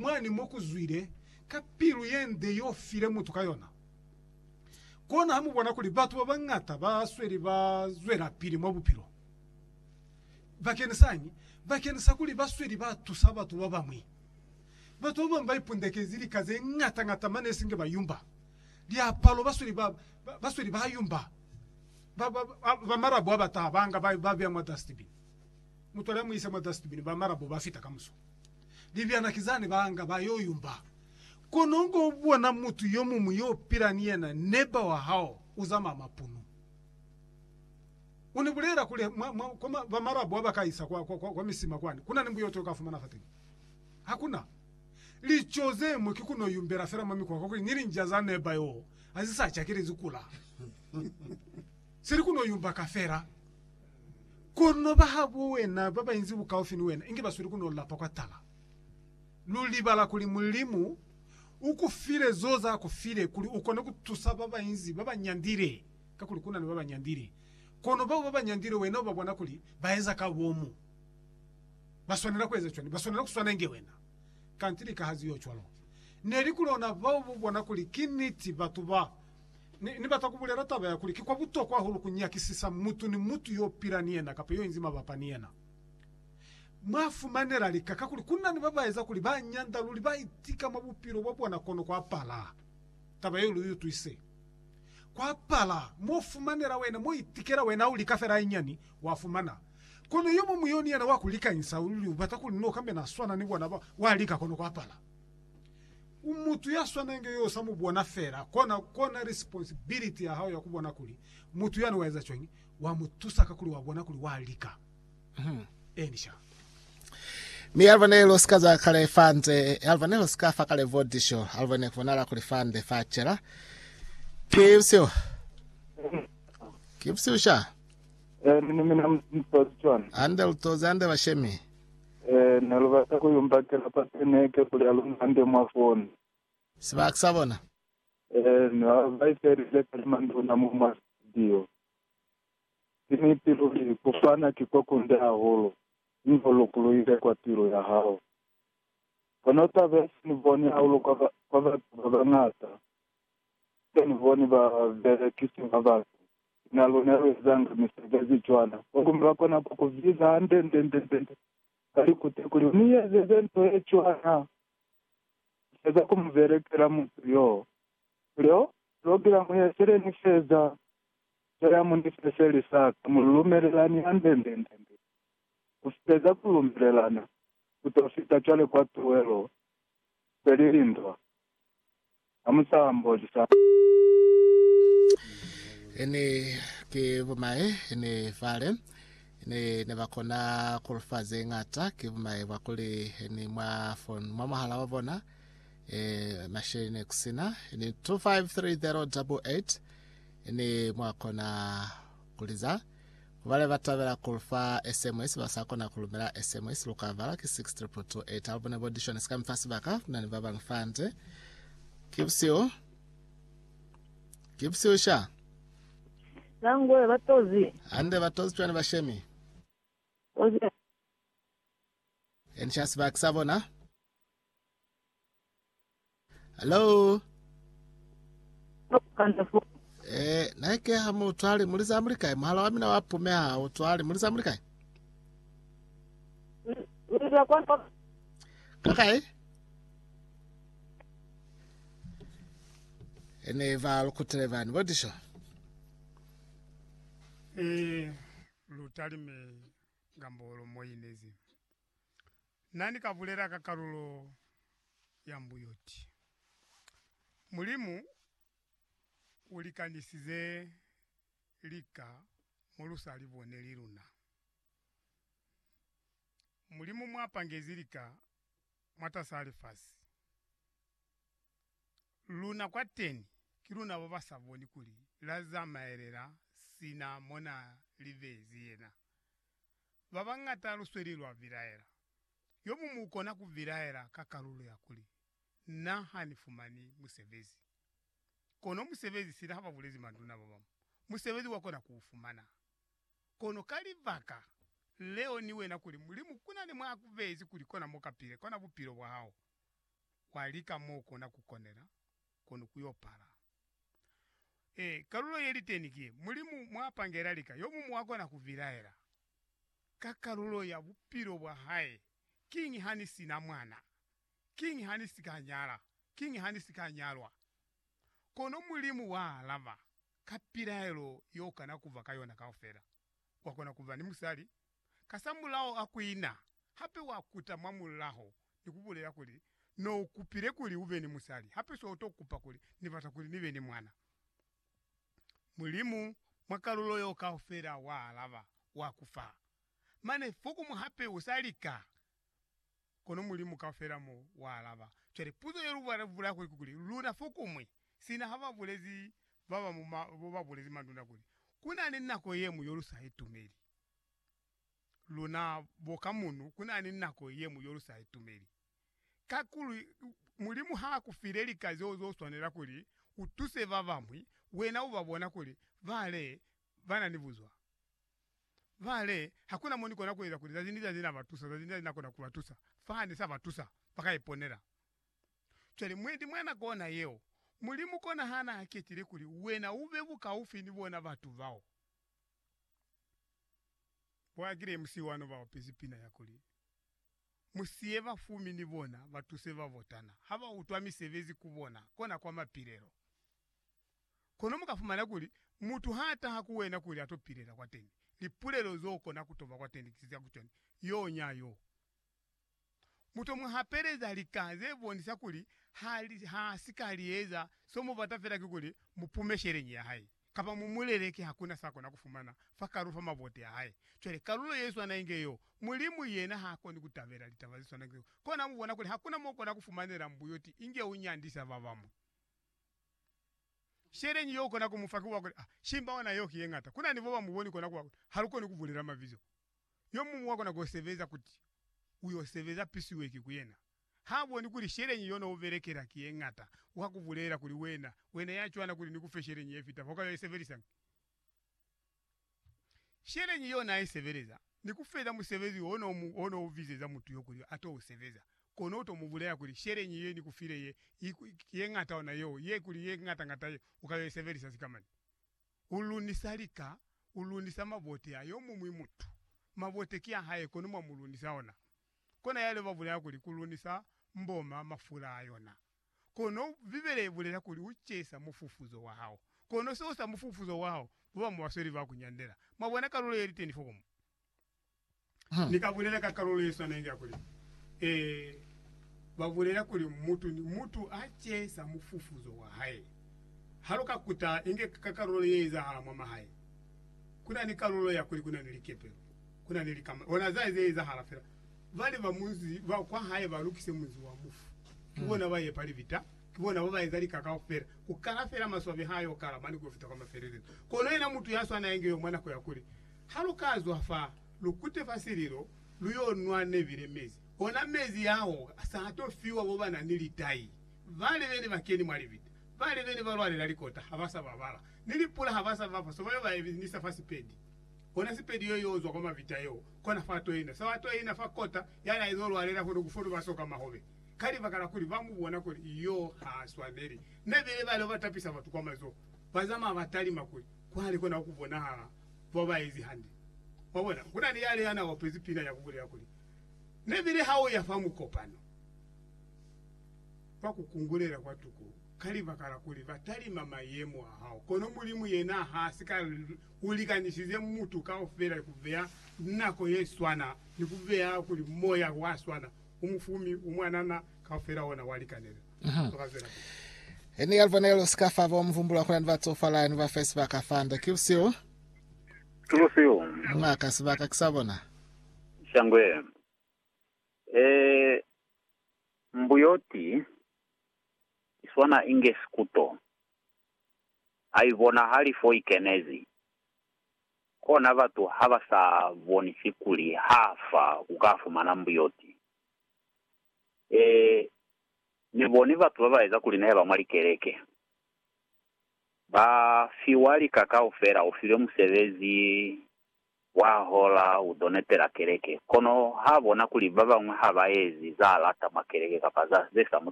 mwani mo ku zwile ka pilu ye nde yo file mutu ka yona. Kona ha mu bona kuli batu ba bañata ba sweli ba zwelapili mwa bupilo. Bakenisaañi? Bakenisa kuli ba sweli ba tusa batu ba bañwi. Batu ba bañwi ba ipundekezi lika ze ñata-ñata mane isinge ba yumba liapalo, ba sweli ba, ba, ba sweli ba yumba ba, ba, ba, ba malabo a ba taha ba nga ba, ba beya mwa dustbin. Mutuali a mu ise mwa dustbin, ba malabo ba fita kamuso. Libyana ki zane ba nga ba yo yumba. Kono u ko bona mutu yo muñwi yo u pila ni yena, neba wa hao, u zamaya mapunu. U ni bulela kuli, Mwa, mwa, kwa ma, ba Marabu ha ba ka isa kwa, kwa, kwa, kwa misima kwani, ku na ni mbuyoto u ka fumana fateni. Hakuna. Lico ze ñwi ki ku no yumbela fela mwa mikwa, kakuli ni linja za neba yoo ha zi sa cakelezi kula. Seli kuno yumba ka fela, kono ba habo wena ba bainzi bukaufi ni wena inge ba sweli kuno lapa kwa tala. Lu libala kuli Mulimu u ku file zo za ku file kuli u kone ku tusa ba bainzi ba ba nyandile, kakuli kuna ni ba ba nyandile. Kono bao ba ba nyandile wena u ba bona kuli ba eza ka bomu. Ba swanela ku eza cwani? Ba swanela ku swana inge wena. Kanti lika ha zi yo cwalo, neli ku lona bao bu bona kuli ki niti batu ba Ni, ni bata ku bulela taba ya kuli ki kwa butokwa hahulu ku nyakisisa mutu ni mutu yo pila ni yena kapa yo inzi mabapa ni yena mwa fumanela lika, kakuli ku na ni ba ba eza kuli ba nyanda luli, ba itika mwa bupilo bwa bona. Kono kwa pala taba yeo lu i utwise. Kwa pala mo fumanela wena, mo itikela wena, ha u lika fela hayinyani, wa fumana. Kono yo muñwi yo ni yena wa ku likanyisa luli, u bata kuli ni no kambena swana ni bona ba, wa lika kono kwa pala. Mutu ya swana inge yo sa mu bona fela, kona, kona responsibility ya hao ya ku bona kuli mutu yani wa eza cwañi, wa mu tusa kakuli wa bona kuli wa lika. Hmm. Eni sha. Mi Alvanel o sika za kale fa nze, Alvanel o sika fa kale vo disho, Alvanel ku bonala kuli fa nde fa cela. Ki bsiu. Ki bsiu sha. Eh, mina mina mtozi chwana. Ande lutozi, ande bashemi. Ee, ne lu bata ku y'o mbakela pateneke kuli a lu mande mwa foni. Sibaka sa bona. Ee, ne ba ba ifelile ka limanduna mo mwa situdio. Ki niti luli, ku fana ki kwa kunde hahulu, mi ho lukuluhile kwa pilu ya hao. Kono taba ye se ni boni hahulu kwa, kwa batu ba bañata, ki se ni boni ba belekisi ba batu Ku na luna lu ezanga misebezi cwana, kono lwa kona ku ku biza hande-nde-nde-nde-nde ka likute kuli ni ezeze nto ye cwana. Ni feza ku mu belekela mutu yoo, kuli, Oh, pulogilamu ye sele ni feza, nto ya mu ni fe seli sa ka, mu lumelelani hande-nde-nde-nde. Ku feza ku lumelelana, ku to fita cwale kwa tuwelo, seli lindwa. Ha mu sa mboti sa. Ne ki bumae ne fale ne, ne ba kona ku lu fa ze ñata. Ki bumae bwa kuli ni mwa fon, mwa mwahala wa bona masheleñi ne ku si na. 253088 Ne mwa kona ku li za. Bale ba tabela kuli fa SMS ba sa kona ku lumela SMS lu ka bala ki 62228. Ha lu bona bo Dishoni sika mi fa sibaka ku na ni ba bañwi fa nde. Ki busihu. Ki busihu sha. Nangwe ba tozi. Hande ba tozi cwani ba shemi. Tozi. Eni sha sibaki sa bona. Hello. Eh, na ke ha mo tswale mo liza muli kae? Mohala wa mina wa pume ha o tswale mo liza muli kae? Ka kae? Ene va lukutele vani bo disho. Eh, lutalime ngambolo moyinezi. Na ni ka bulela ka kalulo ya mbuyoti, Mulimu u likanisize lika mo lu sa li boneli luna. Mulimu mwa pangezi lika mwatas'a lifasi, luna kwateni ki luna ba ba sa boni kuli la zamaelela sina mo na li beezi yena. Ba bañata lusweli lwa bilaela. Yo muñwi u kona ku bilaela ka kalulo ya kuli, Na ha ni fumani musebezi. Kono musebezi sina ha ba bulezi manduna ba bañwi, musebezi wa kona ku u fumana. Kono ka libaka leo ni wena kuli Mulimu ku na ni mwa a ku beezi kuli kona mo ka pile, kona bupilo bwa hao, wa lika mo u kona ku konela. kono ku yo pala. E, kalulo ye li teni ki Mulimu mwa pangela lika, yo mumu a kona ku bilaela ka kalulo ya bupilo bwa hae, Kiñi ha ni si na mwana? Kiñi ha ni si ka nyala? Kiñi ha ni si ka nyalwa? Kono Mulimu wa alaba ka pilaelo yo kana ku ba ka yona kaufela. Wa kona ku ba ni musali, Kasamulaho akuina hape wakuta mwamulaho ni kubulela kuli, No ukupile kuli ube ni musali, hape so uto kupa kuli, Ni bata kuli nibe ni mwana. Mulimu mwa kalulo yeo kaufela wa alaba, wa kufa. Mane, fokumu hape usa lika Kono Mulimu kaufela mo wa alaba. Cwale, puzo ye lu bula kuli ki kuli, luna fokumwi, sina ha ba bulezi ba ba mu ma, bo ba bulezi mandunda kuli, ku na ni nako ye mwi yo lu sa itumeli. Luna bo ka munu, ku na ni nako ye mwi yo lu sa itumeli. Kakuli, Mulimu ha ku file lika zeo zo swanela kuli u tuse ba bamwi, wena u ba bona kuli bale ba na ni buzwa. Vale, hakuna mo nikona kueza kuli zazi ni zazi nabatusa, zazi ni zazi nakona kubatusa, faha nisabatusa, bakaiponela. Cwale, mwendi, mwa nako ona yeo, Mulimu kona hana aketile kuli wena ube bukaufi ni bona batu bao. Bo Aggrey musihu wano baopezi pina yakuli, Musiye bafumi ni bona batuse babotana, habautwa misebezi kubona, kona kwa mapilelo. Kono mu ka fumana kuli mutu ha taha ku wena kuli a to pilela kwateni, lipulelo zo kona ku to ba kwateni ki za ku cwani, Yo nya yo. Mu to mu hapeleza lika ze bonisa kuli ha, ha si ka li eza, so mu bata fela kikuli mu pume sheleñi ya hae, kapa mu mu leleke ha ku na sa kona ku fumana fa kalulo fa mabote a hae. Cwale, kalulo ye swana inge yo, Mulimu yena ha koni ku tabela litaba ze swana inge zeo. Kona mu bona kuli ha ku na mo kona ku fumanela mbuyoti inge u nyandisa ba bamwi. Sheleñi yo ukona kumufa ki wakuli, Ah, shimba ona yeo ki yeñata. Kunani boba muboni kona kuba kuti halukoni kubulela mabizo. Yomuñwi wakona kosebeza kuti uyosebeza pisiweki ku yena. Ha boni kuli sheleñi yo no ubelekela ki yeñata, uka kubulela kuli, Wena, wena yacwana kuli nikufe sheleñi yefita fa uka yo isebelisañi? Sheleñi yo n'a i sebeleza ni ku feza musebezi wo n'o mu wo n'o u bizeza mutu yo kuli a t'o u sebeza. Kono u t'o mu bulela kuli, Sheleñi ye ni ku file ye, i, ye ñata ona yo, ye kuli ye ñata-ñata ye, u ka yo i sebelisa sikamani. U lunisa lika, u lunisa mabote a yo muñwi mutu. Mabote ki a hae, kono mwa mu lunisa ona. Kona yale ba bulela kuli ku lunisa mboma mafula a yona. Kono Bibele ibulela kuli ucesa mufufuzo wahao. Kono seo sa mufufuzo wahao kuba mubasweli ba kunyandela. Mwabona kalulo yeliteni fo komu? Ha. Ni ka bulela ka kalulo yeswana inge ya kuli, E, babulela kuli mutu ni mutu acesa mufufuzo wahae. Haluka kuta inge ka kalulo yeezahala mwa mahae, kuna ni kalulo ya kuli kuna ni likepelo, kuna ni likama, ona za zeezahala fela. Bali ba munzi ba kwa hae ba lukise munzi wa mufu. Ki bona ba yepa libita, ki bona ba ba eza lika kaufela, ku kala fela maswabi ha yo kala mane ku yo fita kwa mafelelezo. Kono yena mutu ya swana inge yo mwa nako ya kuli, Ha lu ka zwa fa, lu kute fa sililo, lu yo nwa nebile mezi. Ona mezi ao sa to fiwa bo ba na ni litai. Bale bene ba keni mwa libita, bale bene ba lwalela likota ha ba sa babala, ni lipula ha ba sa ba fa so ba yo ba eminisa fa sipedi. Kona sipedi yo yo zwa kwa mavita yeo kona fa toina sa wa toina fa kota ya na izo lwalela kono ku fono ba soka mahobe ka libaka la kuli ba mu bona kuli yo ha swaneli ne bile ba leo ba tapisa batu kwa mazoho ba zamaya ba talima kuli kwale kona ku bonahala kwa ba ezi hande. Mwa bona? Ku na ni yale ya na opezi pina ya ku bulela kuli ne bile ha u ya fa mukopano ba ku kungulela kwa tuku ka libaka la kuli ba talima mayemo a hao kono Mulimu yena ha si ka U likanisize mutu kaufela ni ku beya nako ye swana, ni ku beya kuli moya wa swana u mu fumi, u mwanana, kaufela ona wa likanela. Toka zwela pili. Ini ya lubonelo si ka fa bo mu humbula ku na ni ba tsofala ni ba fe sibaka fande. Ki busihu. Ki busihu. Mwa ka sibaka ki sa bona. Shangwe. E mbuyoti i swana inge sikuto. ha i bonahali fo i kenezi, kona batu ha ba sa bonisi kuli ha fa ku ka fumana mbuyoti. Ee, ni boni batu ba ba eza kuli ne ba mwa likeleke. Ba fiwa lika kaufela, u filwe musebezi wa hola, u to netela keleke. Kono ha bona kuli ba bañwi ha ba ezi za lata mwa keleke kapa za ze sa mu